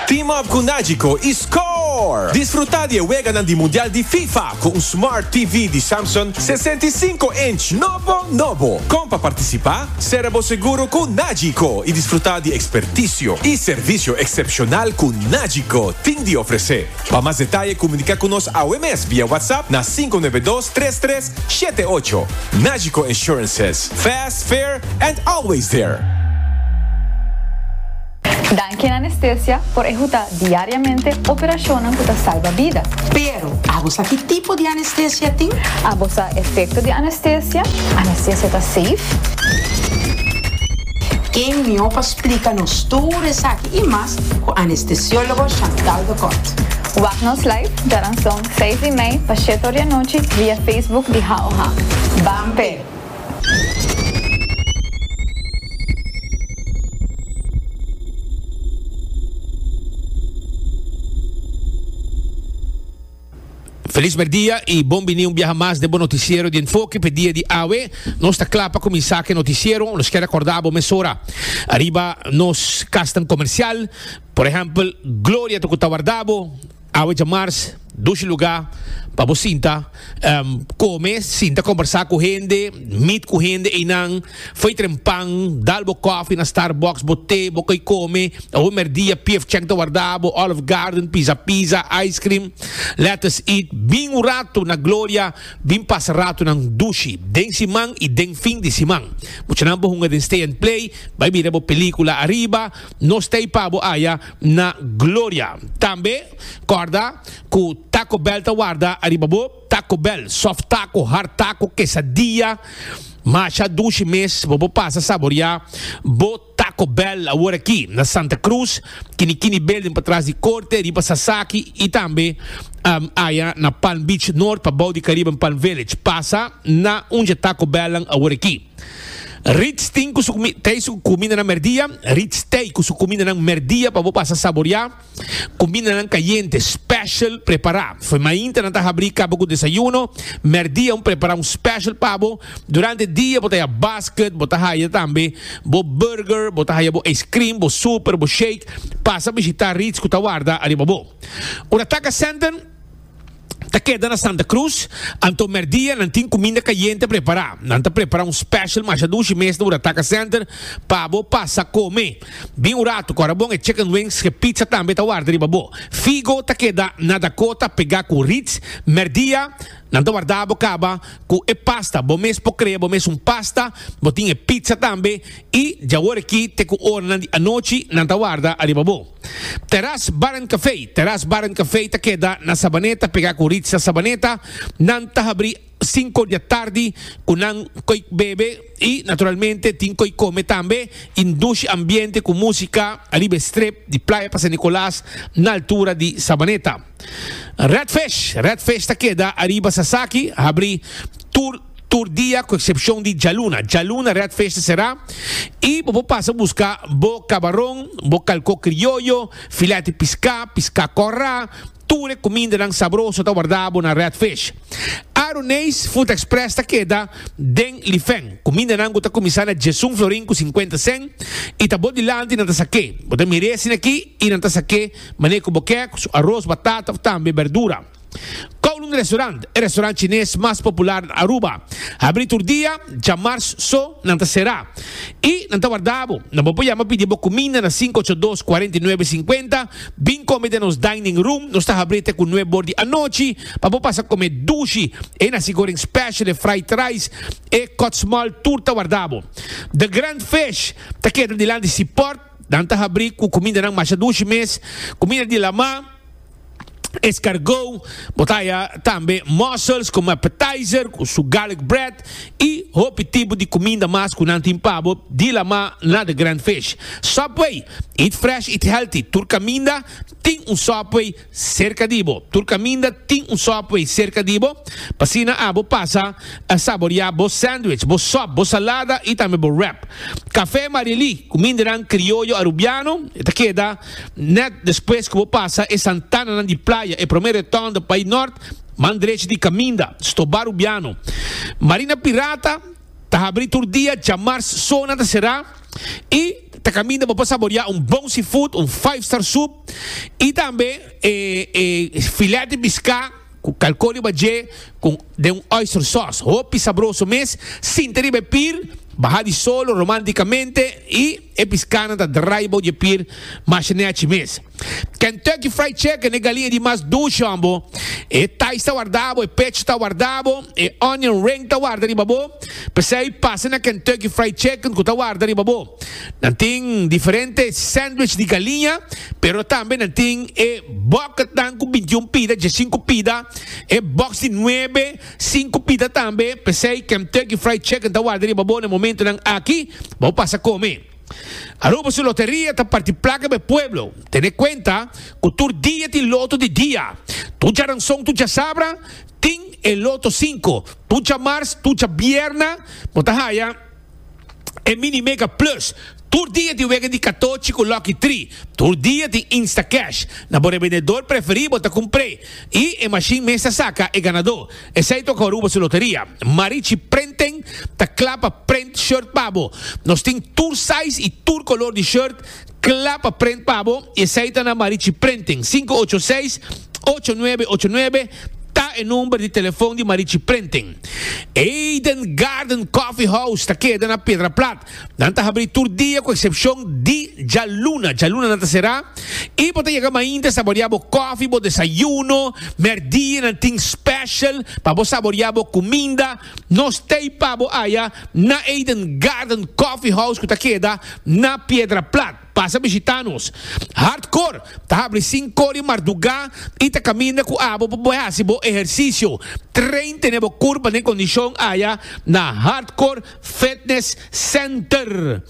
Team up cu Nagico y score! Disfruta di e weganan di Mundial di Fifa cu un Smart TV di Samsung sesenta i sinku inch nobo nobo. Con pa participa? Sera bo seguro cu Nagico y disfruta di experticio y servicio excepcional cu Nagico tin di ofrece. Pa mas detaye comunica cu nos awe mes via WhatsApp na sinku nuebe dos tres tres shete ocho. Nagico Insurances, Fast, Fair and Always There! Danki en Anestesia por ehuta diariamente operacionnan cu ta salba bida. Pero, abo sa ki tipo di anestesia tin? Abo sa efecto di anestesia? Anestesia ta safe? Ken mió pa splica nos tur esaki? y mas cu anestesiologo Chantal de Kort. Wak nos live garanzon seis di mei pa shete oria nochi via Facebook di HOH. Ban pe! Felis merdia y bon bini un biaha mas den bo noticiero di Enfoke. P'e dia di awe nos ta kla pa kuminsá ku e noticiero. Nos kier akorda bo mesora ariba nos kasnan komersial. Por ehèmpel, Gloria ta ku ta warda bo awe djamars dushi lugá pa bo sinta kome, sinta kombersá ku hende, mit ku hende einan. Fai tren pan, dal bo kofi na Starbucks, bo te, bo koe kome, awo merdia pief chèk ta warda bo, Olive Garden, Pizza Pizza, ice cream, let us eat, bin un ratu na Gloria, bin pasa ratunan dushi den siman i den fin di siman. Muchanan bo hunga den Stay and Play, bai bira bo pelíkula ariba, nos ta i pa bo aya na Gloria. Tambe kòrda ku Taco Bell ta warda ariba bo. Taco Bell, soft taco, hard taco, quesadilla, masha dushi mes bo por pasa saboria bo Taco Bell awor aki na Santa Cruz, Kini Kini Building patras di Corte riba Sasaki y tambe aya na Palm Beach North pabou di Caribbean Palm Village. Pasa na un dje Taco Bell nan awor aki. Ritz tin ku su Tay su kumindanan merdia, Ritz Tay ku su kumindanan merdia pa bo pasa saboria. Kumindanan kayente special prepará. Fo'i mainta nan ta habrí kaba ku desayuno, mèrdia un prepará un special pa bo. Durante dia bo ta haya basket, bo ta haya tambe bo burger, bo ta haya bo ijskrim, bo super, bo shake. Pasa bishitá Ritz ku ta warda ariba bo. Ora taka sènten. ta keda na Santa Cruz, anto merdia nan tin cuminda cayente prepara. Nan ta prepara un special masha dushi mes na Urataca Center pa bo pasa come. Bin un rato cu arabon e chicken wings cu e pizza tambe ta warda riba bo. Figo ta keda na Dakota pega cu Ritz. Merdia nan ta warda bo caba cu e pasta. Bo mes por crea bo mes un pasta, bo tin e pizza tambe y dj'awor aki te cu oranan di anochi nan ta warda ariba bo. Teras Bar and Café, Teras Bar and Café ta keda na Sabaneta pegá ku Ritza Sabaneta. Nan ta habrí sinku di atardi ku nan koe bebe i naturalmente tin koe kome tambe i ndushi ambiente ku músika ariba e strip di Playa pa San Nicolas na altura di Sabaneta. Red Fish, Red Fish ta keda ariba Sasaki, habrí tur. tur dia cu excepcion di djaluna. Djaluna Red Fish ta cerá y bo por pasa busca bo cabaron, bo calcó crioyo, filet di piscá, piscá corrá, tur e cumindanan sabroso ta wardabo na Red Fish. Aruneis Food Express ta keda den Lifen. Cumindanan cu ta cuminsá na djesun florin cu cincuenta cent y ta bo dilanti nan ta saqué. Bo ta mir'é asina aquí y nan ta saqué manera cu bo kier, cu su aros, batata of tambe berdura. Kowloon Restaurant, e restaurant chines mas popular na Aruba, habri tur dia, djamars so nan ta sera. I nan ta warda bo, nan bo por yama pidi bo kuminda na sinku ocho dos, kuarenta i nuebe, sinkuenta, bin kome den nos dining room, nos ta habri te ku nueb bor di anochi pa bo pasa kome dushi, e nasi goreng special, e fried rice, e kotsmal tur ta warda bo. The Grand Fish ta keda dilanti Seaport, nan ta habri ku kumindanan masha dushi mes, kuminda di lama, escargot, bo ta haya tambe mussels como appetizer cu su garlic bread y hopi tipo di cuminda mas cu nan tin pa bo dilamá na The Grand Fish. Subway, Eat fresh, eat healthy, tur caminda tin un Subway cerca di bo. Tur caminda tin un Subway cerca di bo, p'asina abo pasa a saboreá bo sandwich, bo sop, bo salada y tambe bo wrap. Café Maria Lee, cumindanan crioyo Arubiano, e ta keda. Nèt despues ku bo pasa e santananan di playa, e promé retòn ta bai nòrt, man drechi di kaminda, stobá Rubiano. Marina Pirata ta habrí tur dia, djamars sona ta será i ta kaminda bo pa saboriá un bon seafood, un five star soup i tambe e e filèt di piská. Cu calco riba dje cu den un oyster sauce hopi sabroso mes, sinta riba e pir, baha di solo romanticamente y e piscanan ta drai bou dje pir masha nechi mes. Kentucky Fried Chicken e galinha di mas ducion bo, e thighs ta warda bo, e pecho ta warda bo, e onion ring ta warda riba bo, p'esey pasa na Kentucky Fried Chicken cu ta warda riba bo. Nan tin diferente sandwich di galiña, pero tambe nan tin e bòketnan ku bintiun pida, djasinku pida, e bòks di nuebe, sinku pida tambe. P'esei Kemtucky Fried Chicken ta warda riba bo na e momentunan aki pa bo pasa kome. Aruba su loteria ta parti plaka pa e pueblo. Tene kuenta ku tur dia tin loto di dia. Tur djaranson, tur djasabra tin e loto sinku. Tur djamars, tur djabièrna bo ta haya. e Mini Mega Plus tur dia di wega di katochi ku Lucky Three. Tur dia tin Instacash. Na bo rebendedor preferí bo ta kumpr'é i e mashin mes ta saka e ganadó. Esei toka Aruba su loteria. Marichi Printing ta kla pa print shirt pa bo. Nos tin tur size i tur kolor di shirt Kla pa prent pa bo, esei ta na Marichi Prenting. Sinku ocho seis, ocho nuebe ocho nuebe ta e number di telefon di Marichi Prenting. Eden Garden Coffee House ta keda na Pedra Plat. Nan ta habri tur dia ku eksepshon di djaluna. Djaluna nan ta será i bo ta yega mainta saboreá bo kofi, bo desayuno. Mèrdí nan tin special pa bo saboreá bo kuminda. Nos tei pa bo aya na Eden Garden Coffee House cu ta keda na Piedra Plat. Pasa bishita nos. Hardcore ta habri cinco di marduga y ta caminda cu abo pa bo haci bo ehercicio. Train tene bo curpa den condicion aya na Hardcore Fitness Center.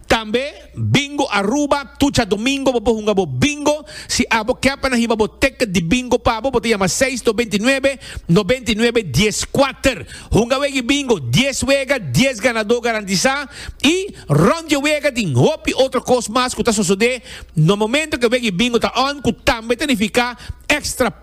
Tambe Bingo Aruba, Tucha Domingo, bo por hunga bo Bingo. Si abo ke pa nan hiba bo ticket di Bingo pa bo, bo ta yama seis dos binti nuebe, nobenta i nuebe, dies kuater. Hunga wegi Bingo, dies wega, dies ganadó garantisá i rònt dje wega tin hopi otro kos mas ku ta sosodé na momento ke wegi Bingo ta on ku tambe ta nifiká extra.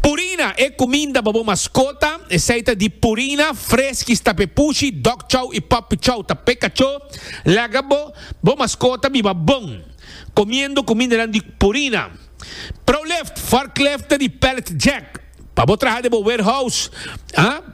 Purina, e kuminda pa bo maskota, esei ta di Purina, Freskies, Tapepushi, Dog Chow i Puppy Chow, ta peka cho. Laga bo bo maskota biba bon komiendo kumindanan di Purina. Prolift, Forklift ta di Pallet Jack pa bo traha den bo warehouse.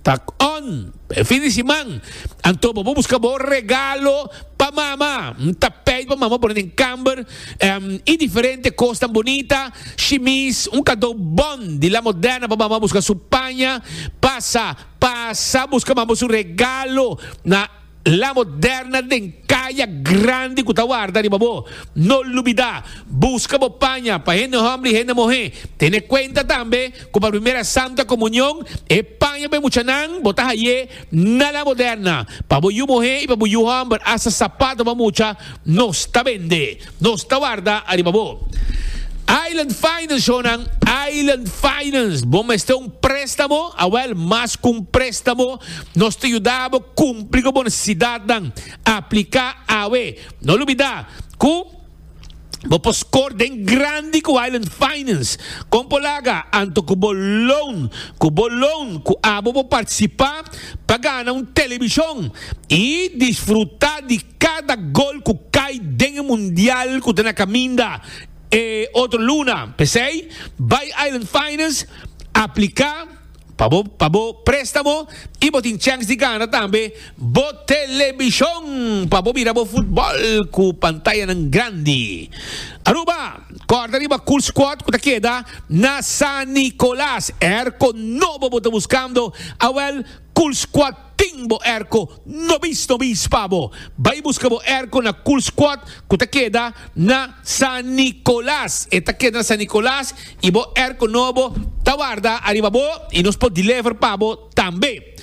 Tak on, pa e fin di siman, anto bo por buska bo regalo pa mama. N ta peit pa mama pone den kamber em i diferente kosnan bunita, shimis, un kadou bon di La Moderna pa mama buska su paña. Pasa, pasa buska mama su regalo na. La moderna den kaya grandi ku ta warda riba bo. No lubidá, buska bo paña pa hende hòmber i hende muhé. Tene kuenta tambe ku pa Primera Santa Komunion e paña pa e muchanan bo ta haye na la moderna. Pa bo yu muhé i pa bo yu hòmber asta sapat bo a mucha nos ta bende. Nos ta warda ariba bo. Island Finance Jonan, Island Finance, bo mester un préstamo? Awel, mas ku un préstamo, nos ta yuda bo kumpli ku bo nesesidatnan. Apliká awe. No lubidá ku bo por skor den grandi ku Island Finance. Kon por laga? Anto ku bo loan. Ku bo loan ku abo por partisipá pa gana un telebishon i disfrutá di Cada gol cu cay den e mundial cu ta na caminda e otro luna. P'esey, bay Island Finance aplica pa bo pa bo prestamo y bo tin chance di gana tambe bo telebision pa bo mira bo futbol cu pantayanan grandi. Aruba, Corda riba cool squad cu ta keda na San Nicolas. Erco nobo bo ta buscando? Awel. Kulskwad tin bo erko nobis nobis pa bo. Bai buska bo erko na Kulskwad ku ta keda na San Nikolas. E ta keda na San Nikolas i bo erko nobo ta warda ariba bo i nos por deliver pa bo tambe.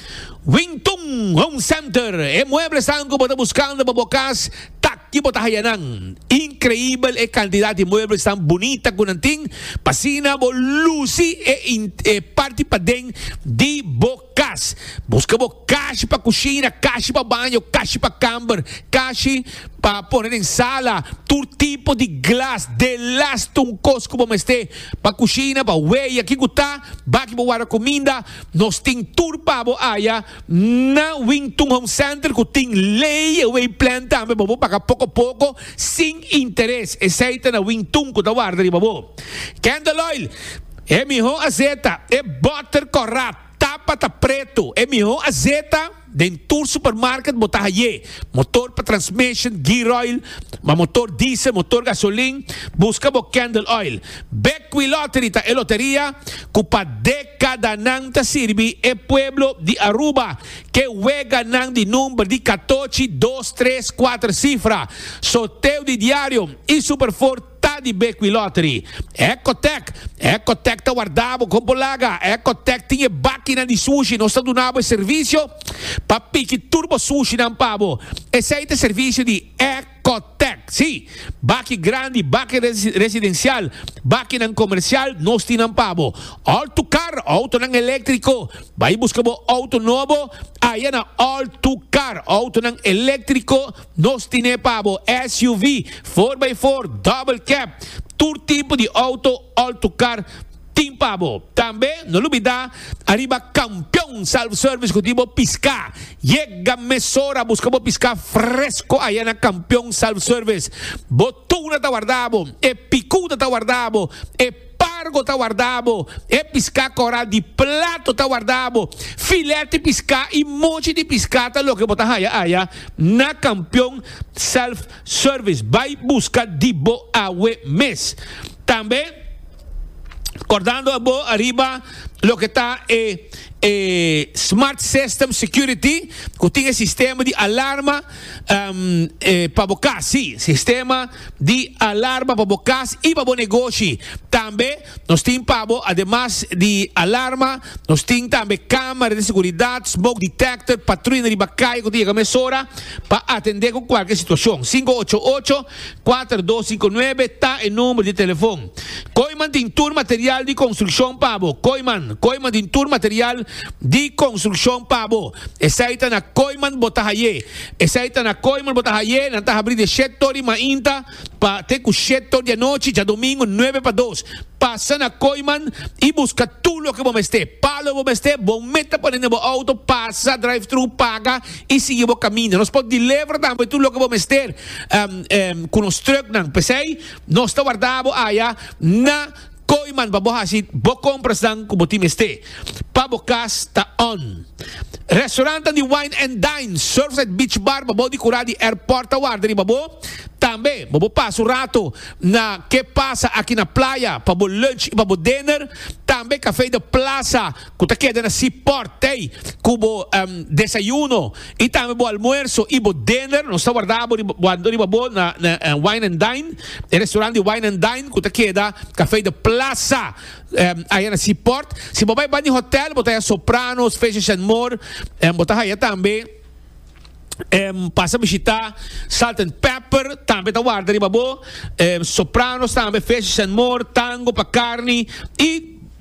Wington Home Center, e mueblesan ku bo ta buskando pa bo kas, Tak di bo ta haya nan? Increibel e cantidad di muebles tan bunita cu nan tin, p'asina bo luci e e parti paden di bo cas. Busca bo cashi pa cushina, cashi pa baño, cashi pa camber, cashi pa pone den sala, tur tipo di glas, de las tun cos cu bo mester pa cushina, pa weya, kico ta, baki bo warda cuminda, nos tin tur pa bo aya. Na Wing Tung Home Center ku tin lei e wei plan tambe pa bo paga poko poko sin interes. Esei ta na Wing Tung ku ta warda riba bo. Candle Oil, E mihó azeta, e bòter kòrap, tapa ta pretu, e mihó azeta den tur supermarket bo ta hayé. Motor pa transmission, gear oil, pa motor diesel, motor gasolin, buska bo Candle Oil. Beckwith Lottery ta e loteria cu pa decadanan ta sirbi e pueblo di Aruba ke weganan di number di catochi, dos, tres, cuater cifra. Sorteo di diario y Super Four ta di Beckwith Lottery. Ecotec, Ecotec ta warda bo con bo laga. Ecotec tin e bakinan di sushi, nos ta duna bo e servicio pa piki tur bo sushinan pa bo. Esey ta e servicio di. Cotec, Sí, baki grandi, baki residencial, bakinan comercial, nos tin nan pa bo. All Tu Car, autonan electrico. Bay busca bo auto nobo aya na All Tu Car, autonan electrico, nos tin e pa bo, SUV, 4x4, double cab, tur tipo di auto All Tu Car, Tin pa bo. Tambe no lubida ariba Campeon Self Service cu tin bo pisca. Yega mesora a busca bo pisca fresco aya na Campeon Self Service. Bo tuna ta warda bo, e picuda ta warda bo, e pargo ta warda bo, e pisca coral di plato ta warda bo. Filet di pisca y mochi di pisca ta loke bo ta haya aya na Campeon Self Service. Bay busca di bo awe mes. Tambe. Kòrdando abo ariba loke ta e e Smart System Security ku tin e sistema di alarma um, e, pa bo kas, si, sistema di alarma pa bo kas i pa bo negoshi. Tambe nos tin pa bo ademas di alarma, nos tin tambe kamera di seguridat, smoke detector, patruina riba kai ku ta yega mesora pa atende ku kualke situashon. Sinku ocho ocho. Kuater dos sinku nuebe ta e number di telefon. Koiman tin tur material di konstrukshon pa bo. Koiman, Koiman tin tur material di konstrukshon pa bo. Esei ta na Koiman bo ta haye. Esei ta na Koiman bo ta haye. Nan ta habri di shet tor di mainta pa te ku shet tor di anochi djadomingu nuebe pa dos. Pasa na Koiman i buska tur loke bo mester. Palo bo mester, bo meta pone na bo outo, pasa drive-thru, paga. i sigui bo kaminda. Nos por deliver tambe tur loke bo mester ku nos truknan. P'esei nos ta warda bo aya na Kooiman pa bo hasi bo komprasnan ku bo tin mester pa bo kas ta on. Restaurantan di Wine and Dine, Surfside Beach Bar pa bou di kura di airport ta warda riba bo. Tambe bo por pasa un rato na Ke Pasa Aki na Playa pa bo lunch i pa bo dinner. Tambe Café de Plaza. ku ta keda na si pòrt tei ku bo desayuno i tambe bo almuerso i bo diner. Nos ta warda bo riba bo na Wine and Dine, e restorant di Wine and Dine ku ta keda Kafei de Plasa aya na si pòrt. Si bo bai bani hòtèl bo ta haya Sopranos, Fishes and More, bo ta haya tambe pasa bishitá Salt and Pepper tambe ta warda riba bo, Sopranos tambe, Fishes and More, Tango pa karni i.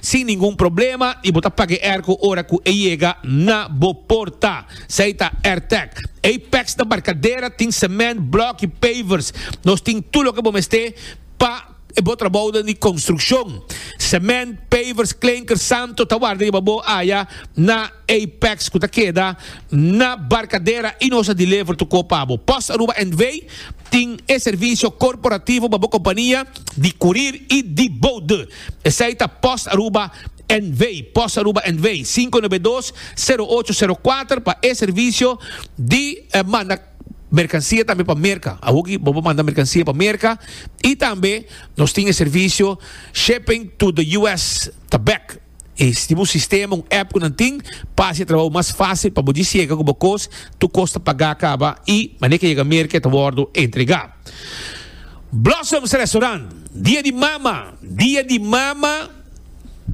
Sin ningun problema y bo ta paga e airco ora cu e yega na bo porta. Esey ta Airtec. Apex na Barcadera tin cement, block y pavers. Nos tin tur loke bo mester pa e bo trabaoden di construccion. Cement, pavers, klinker, santo ta warda riba bo aya na Apex cu ta keda na Barcadera y nos a deliver tu co pa bo. Post Aruba NV. tin e servicio corporativo pa bo compania di curir y di boude. Esei ta post Aruba NV, post Aruba NV, sinku nebe dos, sero ocho, sero kuater pa e servisio di manda merkansia tambe pa Merka. Awoki bo por manda merkansia pa Merka i tambe nos tin e servisio Shipping to the US ta bek. E tin un sistema, un app ku nan tin pa hasi e trabou mas fasil pa bo disiega ku bo kos, tur kos ta pagá kaba i manera ke yega Merka e ta wòrdu entregá. Blossoms Restaurant, Dia di Mama, Dia di Mama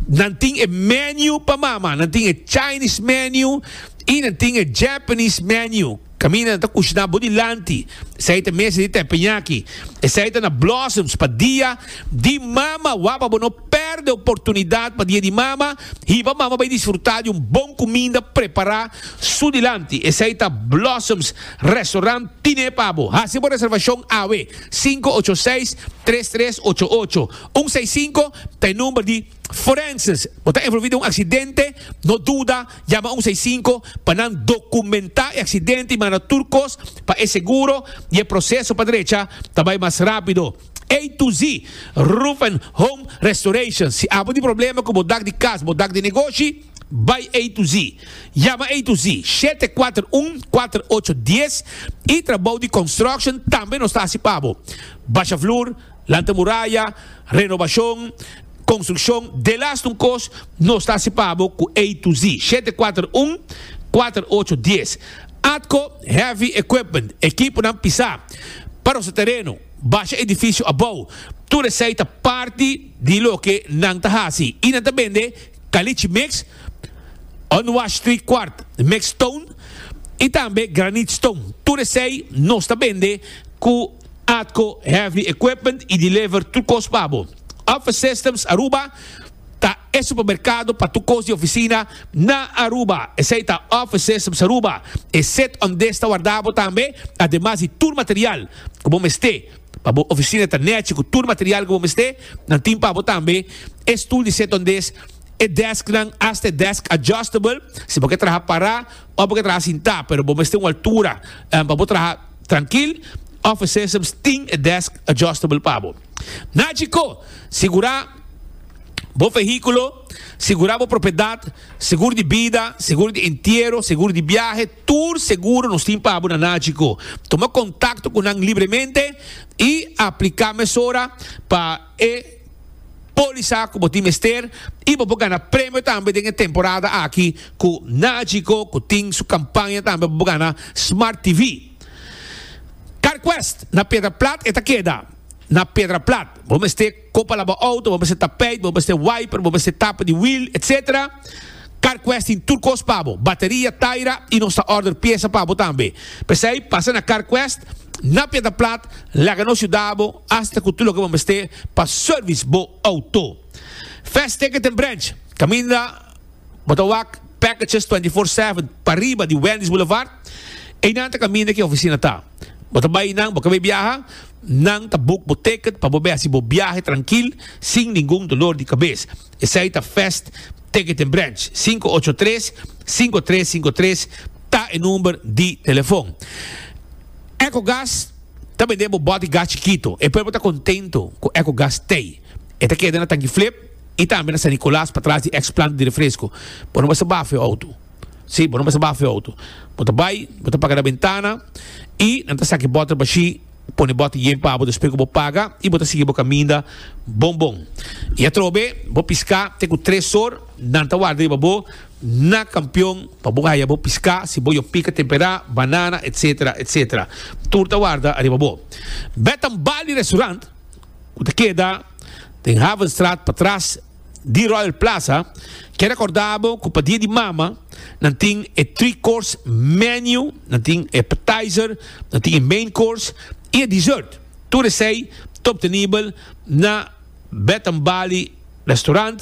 nan tin e menu pa mama, nan tin e Chinese menu y nan tin e Japanese menu. Caminda nan ta cushina bo dilanti, esey ta mesa di tepeñaki, esey ta na Blossoms pa Dia di Mama. Wak pa bo no perde oportunidad pa Dia di Mama, hiba mama bay disfruta di un bon cuminda prepara su dilanti, esey ta Blossoms. Restaurant Tine pa bo. Hasi bo reservashon awe, sinku ocho seis, tres tres ocho ocho, un seis sinku ta e number di Forenses. Bo ta envolvi den un aksidente? No duda, yama un seis sinku pa nan dokumentá e aksidente i manda tur kos pa e seguro i e proseso pa drecha ta bai mas rápido. A to Z Roof and Home Restoration. Si abo di problema ku bo dak di kas, bo dak di negoshi. Bai A to Z. Yama A to Z, shete kuater un, kuater ocho dies i trabou di construction tambe nos ta hasi pa bo. Basha flur, lanta muraya, renobashon, konstrukshon, delas nun kos nos ta hasi pa bo ku A to Z, shete kuater un, kuater ocho dies. Atco Heavy Equipment, ekiponan pisá, pa rosa tereno, basha edifisio abou, tur esei ta parti di loke nan ta hasi i nan ta bende Caliche Mix, Unwashed Three Quart Mix Stone y tambe Granite Stone. Tur esey nos ta bende cu Atco Heavy Equipment y deliver tur cos pa bo. Office Systems Aruba ta e supermercado pa tur cos di oficina na Aruba. Esey ta Office Systems Aruba, e set undesta warda bo tambe ademas di tur material cu bo mester. Pa bo oficina ta nechi cu tur material cu bo mester, nan tin pa bo tambe e stoel di setondez, e desknan, hasta e desk adjustable, si bo ke traha para of bo ke traha sinta, pero bo mester un altura pa bo traha trankil, Office Systems tin e desk adjustable pa bo. Na Chicó, sigura bo vehiculo, sigura bo propiedad. Seguro di bida, seguro di entiero, seguro di biahe, tur seguro nos tin pa abo na Nagico. Tuma contacto cu nan libremente y aplica mesora pa e polisa cu bo tin mester y bo por gana premio tambe den e temporada aki cu Nagico cu tin su campaña tambe pa bo gana Smart TV. CarQuest na Piedraplat e ta keda na Piedraplat. Bo mester. Con palabra auto bo mester tapijt, bo mester wiper, bo mester tapa di wheel, etc. CarQuest tin tur cos pa bo, bateria, taira y nos ta order pieza pa bo tambe. P'esey pasa na CarQuest na Piedra Plat, laga nos yuda bo hasta cu tur loke bo mester pa service bo auto. Fast Ticket den branch, caminda bo ta wak packages twenty four seven pariba di Wendy's Boulevard, eynan ta caminda ki oficina ta. Bo ta bay eynan, bo cab'ey biaha? Nan ta boek bo ticket pa bo be hasi bo biahe trankil sin ningun dolor di kabes. Esei ta Fast Ticket en Branch. Sinku ocho tres, sinku tres sinku tres ta e number di telefon. Ecogas ta bende bo bot di gas chikito. E pueblo ta contento cu Ecogas t'ey. E ta keda na Tanki Flip y tambe na San Nicolas patras di ex planta di refresco. Bo no basta bafo e auto. Sí, bo no mester baha afeo auto. Bo ta bai, bo ta paga na bentana i nan ta saki bòter bashí, pone bòter yen pa bo despues ku bo paga i bo ta sigui bo kaminda bon bon. I atrobe bo piská te ku tres or nan ta warda riba bo na kampion pa bo haya bo piská si bo yo pika temperá, banana etc. Etc. Tur ta warda ariba bo. Bed-and-Bali Restaurant ku ta keda den Havenstraat patras. di Royal Plaza, ke rekorda bo ku pa Dia di Mama nan tin e three course menu, nan tin e appetizer, nan tin e main course i e dessert. Tur esei ta obtenibel na Bath and Bali Restaurant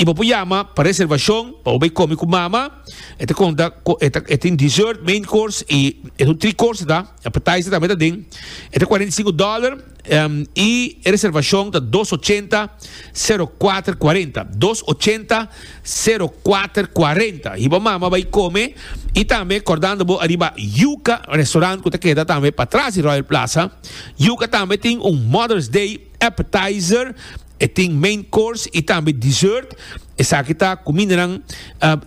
i bo por yama pa reservashon pa bo bai komi ku mama. E ta konta ku e ta e tin dessert, main course i esun three course ta, appetizer tambe ta den. E ta kuarenta i sinku dòler. y e reservacion ta dos ochenta sero kuater kuarenta, dos ochenta sero kuater kuarenta. Hiba mama bai come y tambe kordando bo ariba Yuka restaurant ku ta keda tambe patras di Royal Plaza. Yuka tambe tin un Mother's Day appetizer. E tin main course y tambe dessert. Esaki ta cumindanan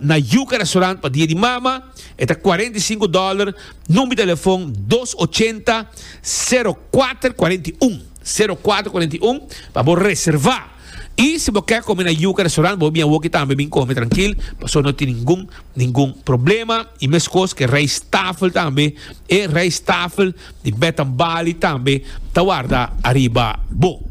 na Yuca Restaurant pa dia di mama. E ta cuarenta y cinco dollar. Num di telefon dos ochenta sero kuater kuarenta i un, sero kuater kuarenta i un, pa bo reserva. Y si bo ke come na Yuca Restaurant bo bia awor ki tambe bin come trankil pasobra no tin ningun ningun problema. Y meskos ke rijsttafel tambe. E rijsttafel di Bath and Bali tambe ta warda ariba bo.